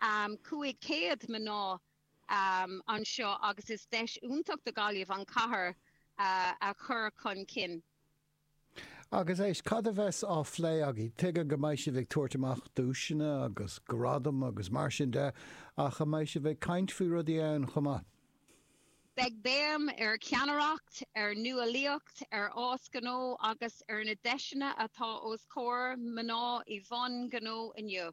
500 mná anseo agus is deis iontach do Ghaillimh an chathair a chur chun cinn. Agus éist, cad a bheas á phlé agaibh? Tuigim go mbeidh sibh ag tabhairt amach duaiseanna agus gradaim agus mar sin de ach an mbeidh sibh ag caint faoi rudaí ann chomh maith? Beidh béim ar cheannaireacht, ar nuálaíocht, ar fhás gnó agus ar na deiseanna atá os comhair mná i mbun gnó inniu.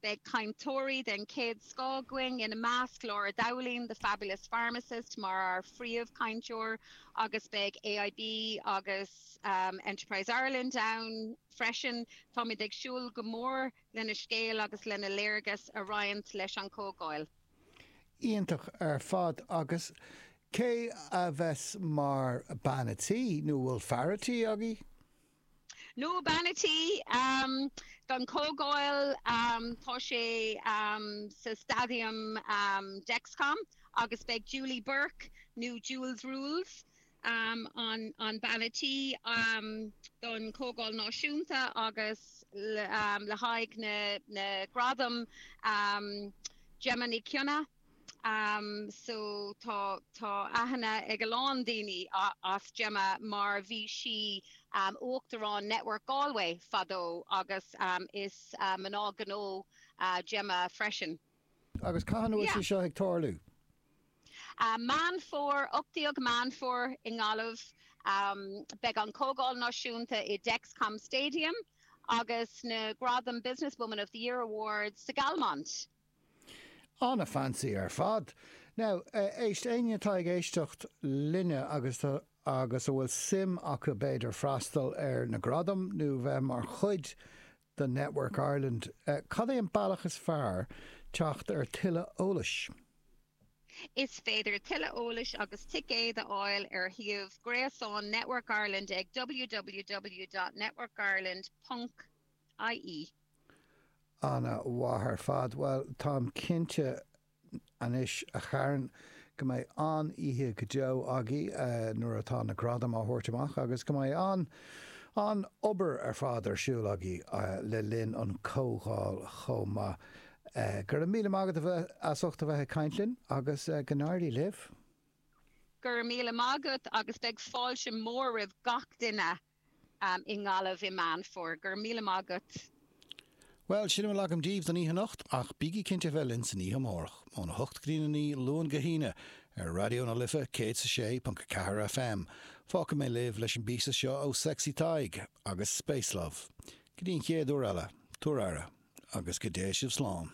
Beidh cainteoirí den chéad scoth againn, ina measc, Laura Dowling, The Fabulous Pharmacist, mar ár phríomhchainteoir agus beidh AIB agus Enterprise Ireland ann freisin. Táimid ag súil go mór lena scéal agus lena léargas a roinnt leis an chomhdháil. Iontach ar fad. Agus cé a bheas mar bean a' tí, nó bhfuil fear a' tí agaibh? nó bean a' tí, don Chomhdháil, tá sé sa Stadium Dexcom agus beidh Julie Burke nó Jules Rules, an bean a' tí don Chomhdháil Náisiúnta agus le haghaidh na gradam, Gemma Ní Chionnaith, so tá aithne ag a lán daoine as Gemma mar bhí sí uachtarán Network Galway fadó agus is mná gnó Gemma freisin. Agus cathain atá sé seo ag tarlú? Meán Fómhair, 18 Meán Fómhair i nGaillimh. Beidh an Comhdháil Náisiúnta i Dexcom Stadium agus na gradaim Business Woman of the Year Awards sa Galmont. An-fancy ar fad! Now, éist, éinne atá ag éisteacht linne agus a bhfuil suim acu b'fhéidir freastal ar na gradaim nó bheith mar chuid de Network Ireland, cad é an bealach is fearr teacht ar tuilleadh eolais? Is féidir tuilleadh eolais agus ticéid a fháil ar shuíomh gréasáin Network Ireland ag www.networkireland. ie. An-mhaith ar fad. Bhuel, táim cinnte anois, a Kharen, go mbeidh an-oíche go deo agaibh nuair atá na gradaim á thabhairt amach agus go mbeidh an-obair ar fad ar siúl agaibh le linn an comhdháil chomh maith. Go raibh míle maith agat as ucht a bheith ag caint linn agus go n-éirí libh! Go raibh míle maith agat agus beidh fáilte mhór roimh gach duine i nGaillimh i Meán Fómhair. Go raibh míle maith agat! Bhuel, sin a bhfuil agam daoibh don oíche anocht, ach bígí cinnte a bheith linn san oíche amárach, óna hocht go dtí a naoi, Luan go hAoine, ar Raidió na Life 106.4 FM. Fágfaidh mé sibh leis an bpíosa seo ó Sexy Tadhg agus Space Love. Go dtí an chéad uair eile, tugaigí aire, agus go dté sibh slán.